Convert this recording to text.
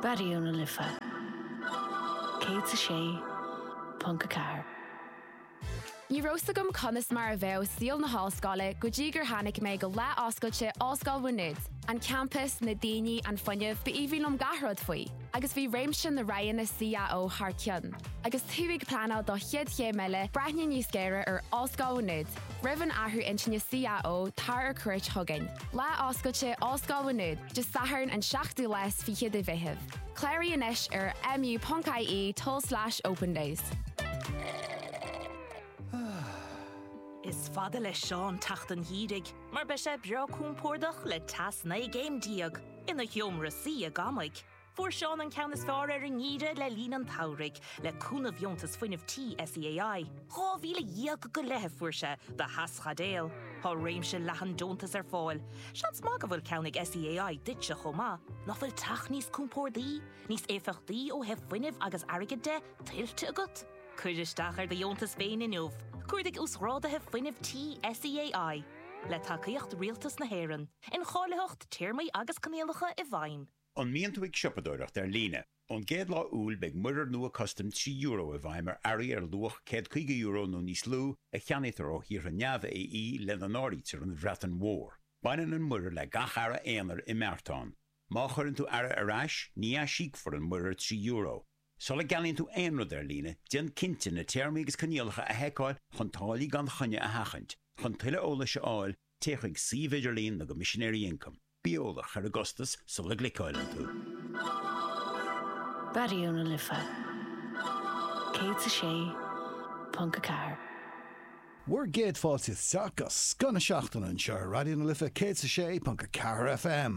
Raidió na Life 106.4. Ní raibh 's agam conas mar a bheadh saol na hollscoile go dtí gur tháinig mé go lá oscailte Ollscoil Mhá Nuad. An campas, na daoine, an fuinneamh, ba aoibhinn liom gach rud faoi. Agus bhí réimse na roghanna CAO thar cionn. Agus tú ag pleanáil do chéad chéim eile, breathnaigh níos géire ar Ollscoil Mhá Nuad. Roimh an athrú intinne CAO tar ar cuairt chugainn. Lá oscailte Ollscoil Mhá Nuad, Dé Sathairn an 7ú lá is fiche de Mheitheamh. Cláraigh anois ar mu.ie tulslais opendays. Is fada le Seán teacht an gheimhridh mar beidh sé breá compordach le teas 19 gcéim ina sheomra suí i gcónaí. Fuair Seán an ceann is fearr ar an ngeimhreadh le linn an tsamhraidh, le cúnamh dheontas fuinnimh tí SEAI. Dhá mhíle dhéag go leith a fuair sé do theaschaidéal. Tá réimse leathan deontas ar fáil. Seans maith go bhfuil ceann ag SEAI duitse chomh maith. Nach bhfuil teach níos compordaí, níos éifeachtaí ó thaobh fuinnimh agus airgid de, tuillte agat? Cuir isteach ar do dheontas féin inniu. Cuardaigh Uasghrádaithe Fuinnimh Tí SEAI. Le tacaíocht Rialtas na hÉireann. Incháilitheacht, Téarmaí agus Coinníollacha i bhfeidhm. An mbíonn tú ag siopadóireacht ar líne? Ón gcéad lá Iúil beidh muirear nua custaim trí euro i bhfeidhm ar earraí ar luach €150 nó níos lú a cheannaítear ó thíortha neamh-AE, lena n-áirítear an Bhreatain Mhór. Baineann an muirear le gach earra aonair i mbeartán. Má chuireann tú earra ar ais, ní aisíocfar an muirear trí euro. Sula gceannaíonn tú aon rud ar líne, déan cinnte na téarmaí agus coinníollacha a sheiceáil chun táillí gan choinne a sheachaint. Chun tuilleadh eolais a fháil, téigh chuig suíomh idirlín na gCoimisinéirí Ioncaim. Bí eolach ar an gcostas sula gcliceálann tú. Raidió na Life 106.4. Bhur gcéad fáilte isteach go scoth na seachtaine anseo ar Raidió na Life 106.4 FM.